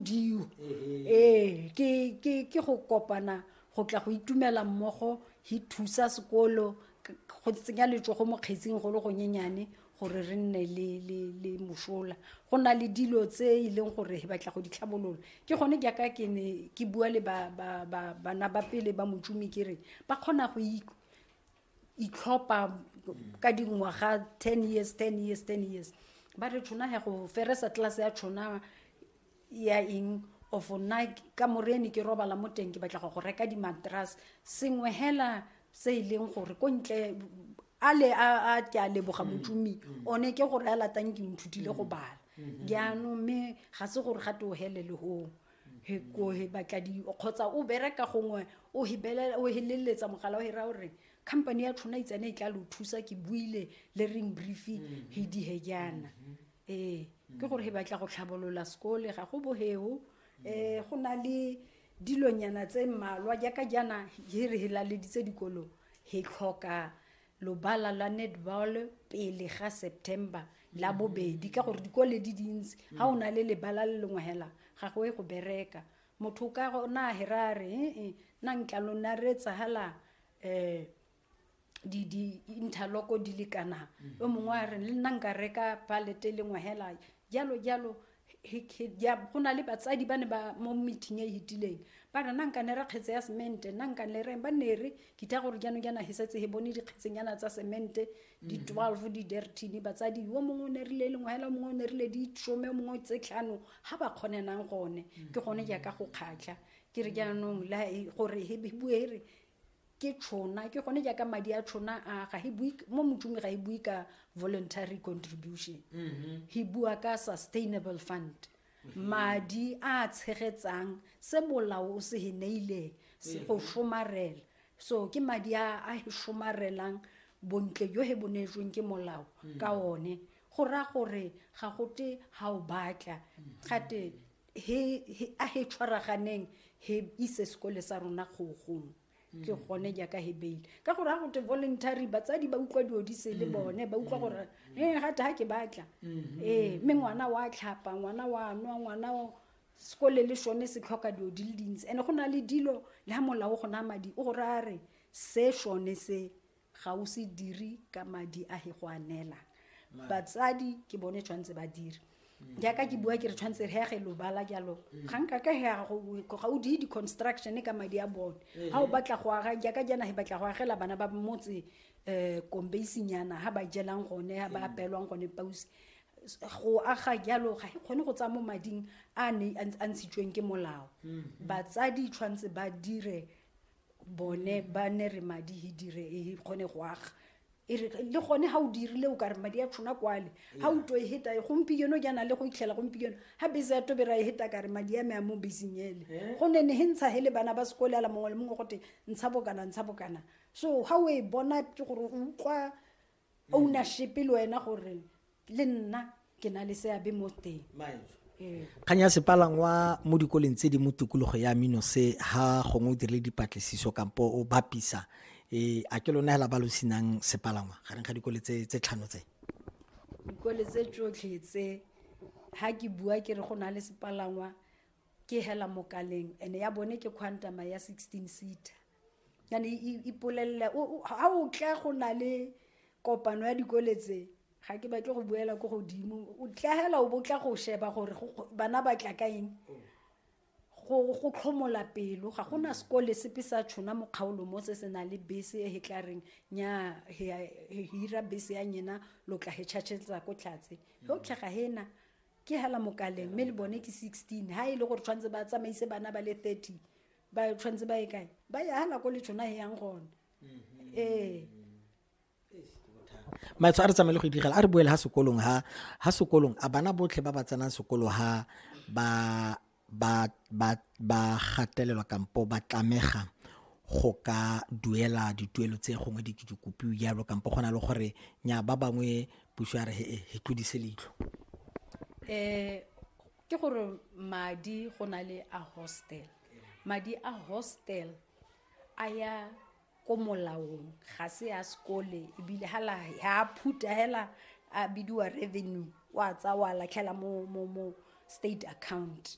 diyo ee ke ke ke go kopana go tla go itumela mmogo he thusa sekolo k- go tsenya letsogo mo kgetsing go le gonyenyane gore re nne le le le mosola go na le dilo tse e leng gore he batla go di tlhabolola ke gone jaaka ke ne ke bua le ba ba ba bana ba pele ba motšomi ke re ba kgona go ik- itlhopha ka dingwaga ten years ten years ten years ba re tšhona he go feresa tlase ya tšhona ya eng of nna ka morene ke robala mo teng ke batla go go reka dimatras sengwe hela se e leng gore ko ntle a le a ke a leboga mm. motšomi mm. one ke gore a latang ke nthutile go mm. bala jaanong mme ga se gore ga te o helele gong he ko he batla di kgotsa o bereka gongwe o hebelela o heleletsa mogala o hera gore company ya tlhona itsane e tla lo thusa ke buile le ring brief mm-hmm. he di he jaana mm-hmm. ee ke mm-hmm. gore he batla go tlhabolola sekole ga go boheo um eh, go na le dilonyana tse mmalwa jaaka jaana he re helaleditse dikolo he tlhoka lobala lwa netball pele ga september la bobedi ka gore dikole di dintsi ga o na le lebala le lengwe hela ga go e go bereka motho o ka gona a hera a re ee na nkla lona re tsagala um di-interloko di lekanang o mongwe a re le nna nka reka palete e lengwe hela jalo jalo go na le batsadi ba ne ba mo meeting e e hitileng ba re nanka ne re kgetse ya semente nanka le reng ba ne re kitha gore jaanong jaana he setse he bone dikgetsenyana tsa semente di mm. twelve di dertine batsadi yo mongwe o ne rile lengwe hela mongwe o ne rile di some mongwe tse tlhano ga ba kgonenang gone mm. ke gone jaaka go kgatlha ke re jaanong gore he bue re ke tšhona ke gone jaaka madi a tšhona a ga bue mo motsumi ga e bue ka voluntary contribution mm-hmm. he bua ka sustainable fund mm-hmm. madi a tshegetsang se bolao o se he neileng se go mm-hmm. somarela so ke madi a a he somarelang bontle jo he bonetsweng ke molao ka one go raya gore ga gote ga o batla gate he, he, a he tshwaraganeng he ise sekole sa rona kgogong ke gone jaaka he beile ka gore ga gote voluntary batsadi ba utlwa dilo di se le bone ba utlwa gore e gate ga ke batla ee mme ngwana wa tlhapa ngwana wa nwa ngwana o- sekole le sone se tlhoka dilo di le dintsi and-e go na le dilo le ga molao go na madi o gore a re se sone se ga o se diri ka madi a he go a neelang batsadi ke bone tshwanetse ba dire mm. jaaka ke bua ke re tshwanetse re yage lobala jalo mm. ga nka ka ga o die di-construction ka madi a bone eh. ga o batla go aga jaaka jana he batla go agela bana ba motse um kombeisinyana ga ba jelang gone ga ba mm. apelwang gone pause go aga jalo ga e kgone go tsaya mo mading a ne a ntshitsweng ke molao batsadi tshwanetse ba dire bone ba ne re madi he dire e kgone go aga e re le gone ga o dirile o kare madi a tshona kwale ga o to e heta e gompieno ke na le go itlhela gompieno ga bese ya tobera e heta kare madi a me a mo beseng ele Eh? go ne ne he ntsha he le bana ba sekole ala mongwe le mongwe gote ntsha bokana ntsha bokana so ga o e bona ke gore o utlwa ownership le wena gore le nna ke na le seabe mo teng ee. kgang ya sepalangwa mo dikoleng tse di mo tikologo ya mino se ha gongwe o dirile dipatlisiso kampo o bapisa um a ke lona hela ba lo senang sepalangwa gareng ga dikole tse tlhano tse dikole tse tsotlhe tse ha ke bua ke re go na le sepalangwa ke hela mokaleng and ya bone ke quantama ya sixteen seater yane ipolelele ga o tla go na le kopano ya dikole tse ga ke batle go buela ko godimo o tlagela o bo tla go sheba gore bana ba tla ka eng go tlhomola pelo ga gona sekole sepe sa tshona mo kgaolo mo se se nang le bese e tla reng nya hira bese ya nyena lo tla he tšhatšhetsa ko tlhatse ge o tlhaga hena ke hela mokaleng mme le bone ke sixteen ha e le gore tshwanetse ba tsamaise bana ba le thirty ba tshwanetse ba ye kae ba ye ha nako le tshona e yang gone mm-hmm. ee maetsho a re tsamaye le go idigela a re boele ha sekolong ha ha sekolong a bana botlhe ba ba tsenang sekolo ha ba ba ba ba gatelelwa kampo ba tlamega go ka duela dituelo tse gongwe di ke dikopiwe jalo kampo go na le gore nya ba bangwe puso ya re he tlodise leitlho um ke gore madi go na le a hostel madi a hostel a ya ko molaong ga se ya sekole ebile ha la ha phuta hela a bidiwa revenue wa tsa wa latlhela mo mo mo state account